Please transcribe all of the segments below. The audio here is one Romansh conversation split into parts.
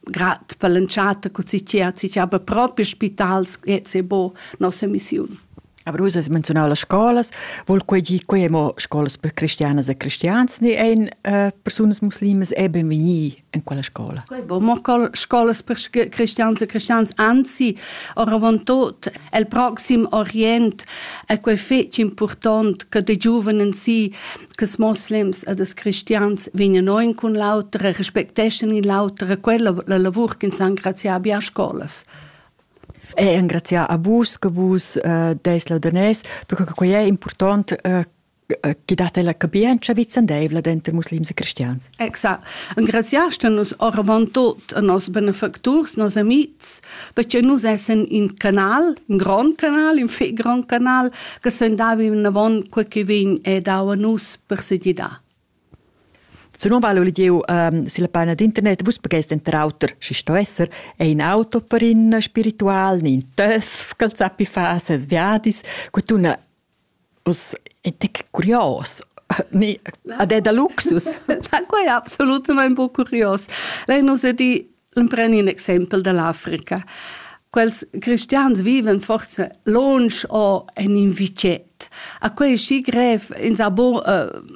grad per l'entschatta che si c'è, si c'è aber proprio spitals che se bo nossa missione. Aber du hast mencionat las scolas, wohl quei gi quei mo scolas per cristianas e cristians ne ein äh, personas muslimas eben vegni in quella scola. Quei bo mo scolas per cristians e cristians anzi oravantut el proxim orient è quei fetg important che de giovani si che moslems ed els cristians vegnan oin cun l'auter e respecteschan in l'auter e quella la lavur ch'ins engrazià abbia a scolas. E engrazià a vus che vus eh, des laudanès, perché quei è important eh, che date la capienza vicendeivla denter muslims e cristians. Exact. Engraziast nus oravant tot a nos benefacturs, nos amics, perché nus essen in canal, in grand canal, in fe grand canal, che sen davi avon quel che vegn e dau a nus per sedidar. Se non vale Olivier ähm, si la pena d'internet, vus pagest enter auter, si sto esser, è in auto per in spiritual, in töff, col zappi fa ses viadis, quet una Uss è tec curios. Ni, ad è da luxus? Na, quai è absolutamain buc curios. Lei nus è di empren in exempel dall'Africa. Quels cristians viven forse lonsch o en in vitget. A quei è schi grev, ins ha bo uh,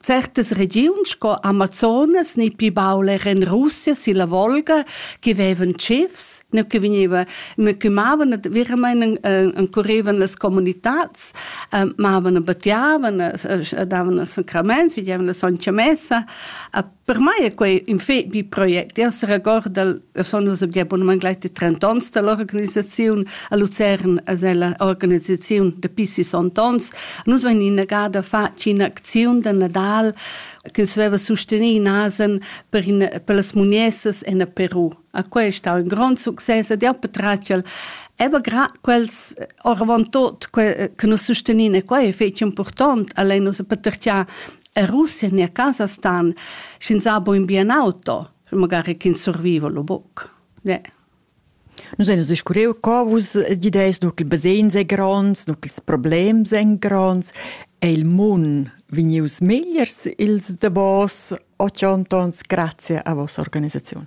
Certas regiuns sco Amazonas ni pli baul era en Russia silla Volga che vevan tschifs, ne che vegnevan, me che mavan veramein encurrevan las comunitads, mavan e battiavan, davan sacraments, videvan la sontga messa, Per mai è quei in fet bi project. Io seregorda, io sono nus abia bunament gleich de 30 ans dall'organisaziun a Luzern, as è la organisaziun dapi 60 ans. Nus vein innegada fatg in'acziun da Nadal che veva sustenì nasen per, in, per las muniessas en Peru. A quei è stau in grond success ed io patratgel Eba grad quels oravant tot che, che nos sustenin e quei è fetg important, allein nus patertia E Russia en a casa stan sch'ins ha buin bien auto, magari ch'ins surviva lo buc. Yeah. Nus ein scuriu co vus gideis, nu ch'il basegns ei gronds, nu ch'ils problems ein gronds. È il mun vegnius megliers ils davos otg ontons grazie a vossa organisaziun?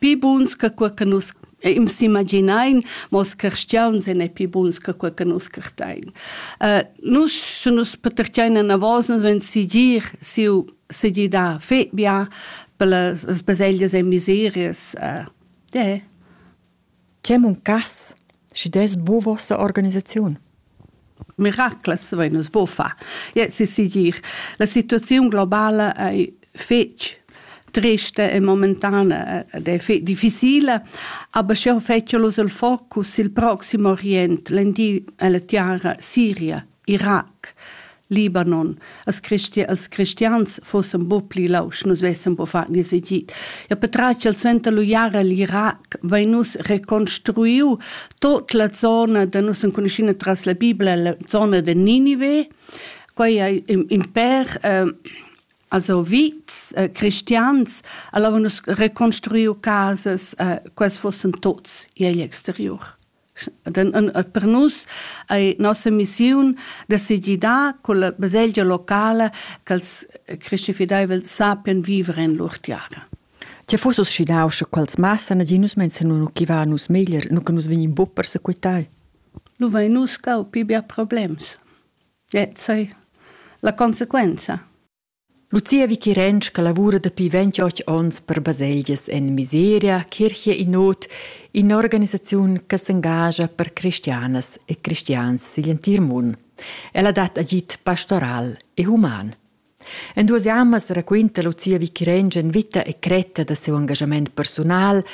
Pii buns che quei che nus ehm s'immaginain, mo els carstiauns ein ei pii buns che quei che nus cartein. Äh, nus, sche nus patertgein anavos, nus vein sigir siu segir dar fetbia per las baseglias e miserias. Äh, yeah. Tgei muncass, schi dess buca vossa organisaziun? Miraclas vein nus buca far. Jett si segir. La situaziun globala ei fetg trista e momentana ed ei fe- difficile, aber sch'jeu fetschel uss il focus sil proxim orient, l'Endir e la tiara Siria. Irac, Libanon, als, christi als cristians fossen bo pli lausch, nus vessen bo far nies egid. Ja petratg al suenter lu jara l'Irac vein nus reconstruiu tot la zona da nus enconuschina tras la Bibla, la zona de Ninive, quei ei imper eh, also vits eh, cristians, allora nus reconstruiu casas, eh, quels fossen tots igl exterior. per nus ei nossa missiun decidir da con la baselgia locala ch'els Christi fideivel sapien viver en lur tiara. Che fusses schinau sche quels massa naginus menzionano chi va nus meglier, nu che nus vegnin buc per sequitai? Nu vai nus cau pi bia problems. E sei la conseguenza. Lucia Vichirensch che lavura dapi ventioch onns per baselgias en miseria, Kirche in Not, in'organisaziun che s'engascha per cristianas e cristians sigl entir mund. Ella dat agid pastoral e human. En duas jammas raquinta Lucia Vichirensch en vita e cretta da siu engagament personal,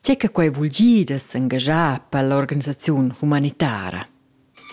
tge che quei vul gir da s'engaschar per l'organisaziun humanitara.